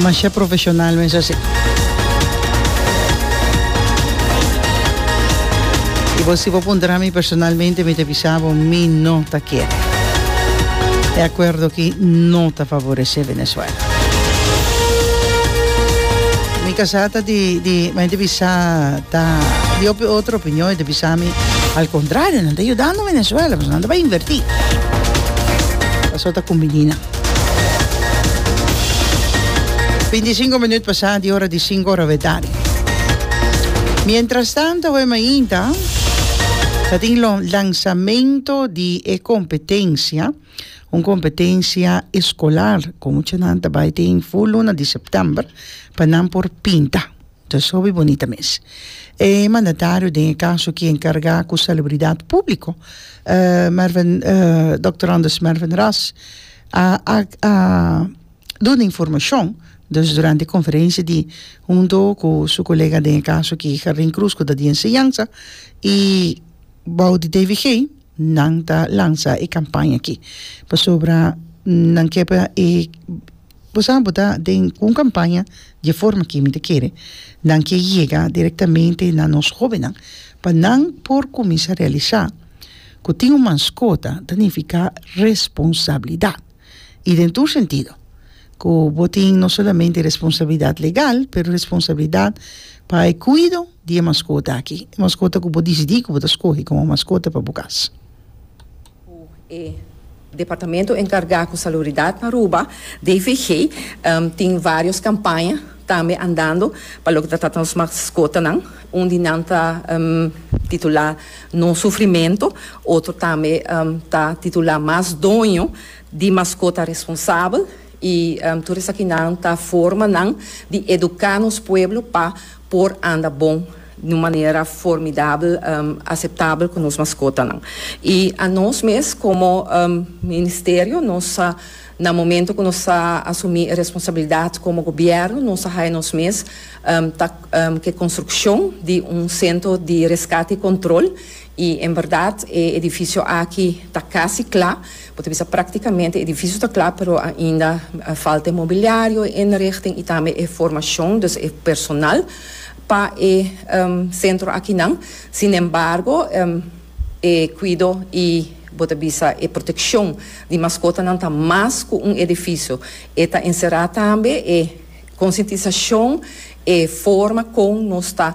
Masha profesional mester si. Y bo si bo puntra mi personalmente mi ta bisa bo mi no ta kere e acuerdo aki no ta favorece Venezuela. Mi casa ta di di mi ta bisa ta di otro opinion y ta bisa mi al contrario nan ta yuda. Venezuela pues nan ta bai inverti paso ta kumbini nan. Binti sinku minut pasa di ora di sinku ora bedadi. Mientras tanto awe mainta ta tin lo lansamento di e kompetensia un kompetensia eskolar ku mucha nan ta bai tin fu luna di september pa nan por pinta. Ta sobi bonita mes. E mandatario den e caso ki encarga cu salubridad publico, Dokter Anders Mervyn Ras, a a duna informacion dus durante e conferencia di hunto cu su colega den e caso ki Jardin Cruz cu ta di enseñansa y bou di DVG nan ta lansa e campaña aki pasobra nan kep e Bo sa bo ta den un campaña dje forma ki mi ta kere nan ke yega directamente na nos hobennan pa nan por cuminsa realisa cu tin un manscota ta nifica responsabilidad y den tur sentido cu bo tin no solamente responsabilidad legal pero responsabilidad pa e cuido di e manscota aki, e manscota cu bo dicidi cu bo ta scoge como manscota pa bo cas. cu e Departamento enkargá ku Salubridad pa Aruba, DVG, tin vários kampaña tambe andando pa loke ta trata nos maskotanan. Un di nan ta titulá No Sufrimento, otro tambe ta titulá Mas Doño di Maskota Responsabel. I tur esakinan ta forma nan di eduká nos pueblo pa por anda bon di un manera formidabel, aseptabel ku nos maskotanan. I a nos mes komo ministerio nos sa na momento ku nos a asumí e responsabilidat komo gobièrnu nos a haya nos mes ta ke konstrukshon di un sentro di reskate i kontrol i en bèrdat e edifisio aki ta kasi kla. Bo ta bisa práktikamente edifisio ta kla pero ainda falta e mobiliario, e inrichting i tambe e formashon, dus e personal pa e sentro akinan. Sinembargo e kuido i bo ta bisa e protekshon di maskotanan ta mas ku un edifisio. E ta enserá tambe e konsientisashon, e forma kon nos ta.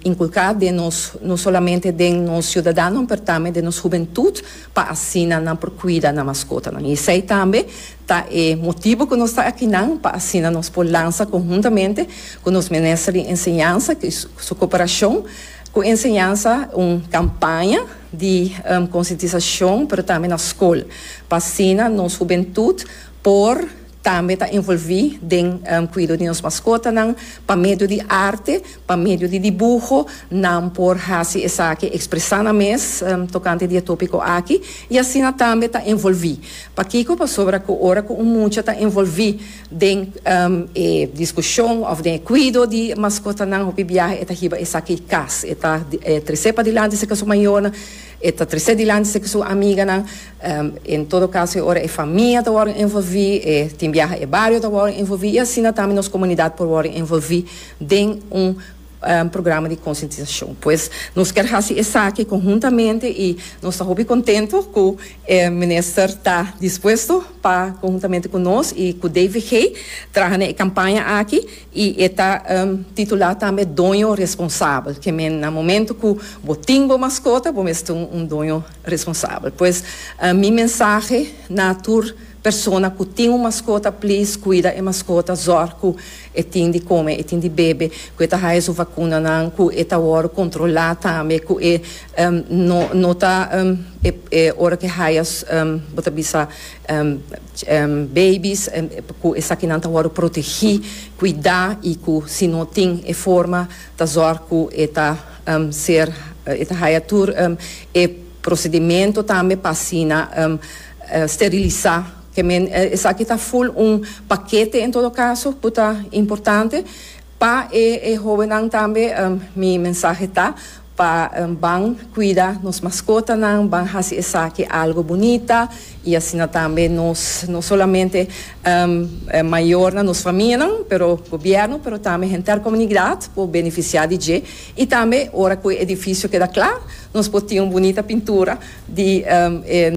inculca den nos, no solamente den nos ciudadanonan, pero tambe den nos hubentud, pa asina nan por cuida nan mascotanan. Y esey tambe ta e motibo cu nos ta akinan, pa asina nos por lanza conhuntamente cu nos Minister di Enseñanza y su cooperacion cu Enseñanza un campaña di concientisacion, pero tambe na scol, pa asina nos hubentud por. Tambe ta envolví den kuido di nos maskotanan pa medio di arte, pa medio di dibuho, nan por hasi esaki ekspresá nan mes tokante di e tópiko aki i asina tambe ta envolví. Pakiko? Pasobra ku ora ku un mucha ta envolví den e diskushon òf den e kuido di maskotanan hopi biaha e ta hiba esaki kas, e ta tres'é padilanti se ke su mayornan, E ta trese dilanti si su amiganan. En todo kaso e ora e famia ta wòrdu envolví, e tin biaha e bario ta wòrdu envolví i asina tambe nos komunidat por wòrdu envolví den un programa di konsientisashon. Pues nos kier hasi esaki konhuntamente i nos ta hopi kontentu ku e minister ta dispuesto pa konhuntamente ku nos i ku DVG traha na e kampaña aki. I e ta titulá tambe doño responsabel, ke men na momento ku bo tin bo maskota bo mester ta un doño responsabel. Pues mi mensahe na tur persona ku tin un maskota, please kuida e maskota, zòrg ku e tin di kome, e tin di bebe, ku e ta haya su vakunanan, ku e ta wòrdu kontrolá tambe, ku e no ta e ora ku e haya bo ta bisa. Baby's cu esakinan ta wordo protegi, cuida y cu si no tin e forma ta zorg cu e ta ser e ta haya tur e procedimento tambe pa asina sterilisa. Kemen esaki ta full un pakete en todo caso cu ta importante. Pa e hobennan tambe mi mensahe ta. pa ban cuida nos mascotanan, ban haci esaki algo bunita y asina tambe nos, no solamente mayornan, nos famianan, pero gobierno, pero tambe henter comunidad por beneficia di dje y tambe ora cu e edificio keda cla nos por tin un bunita pintura di e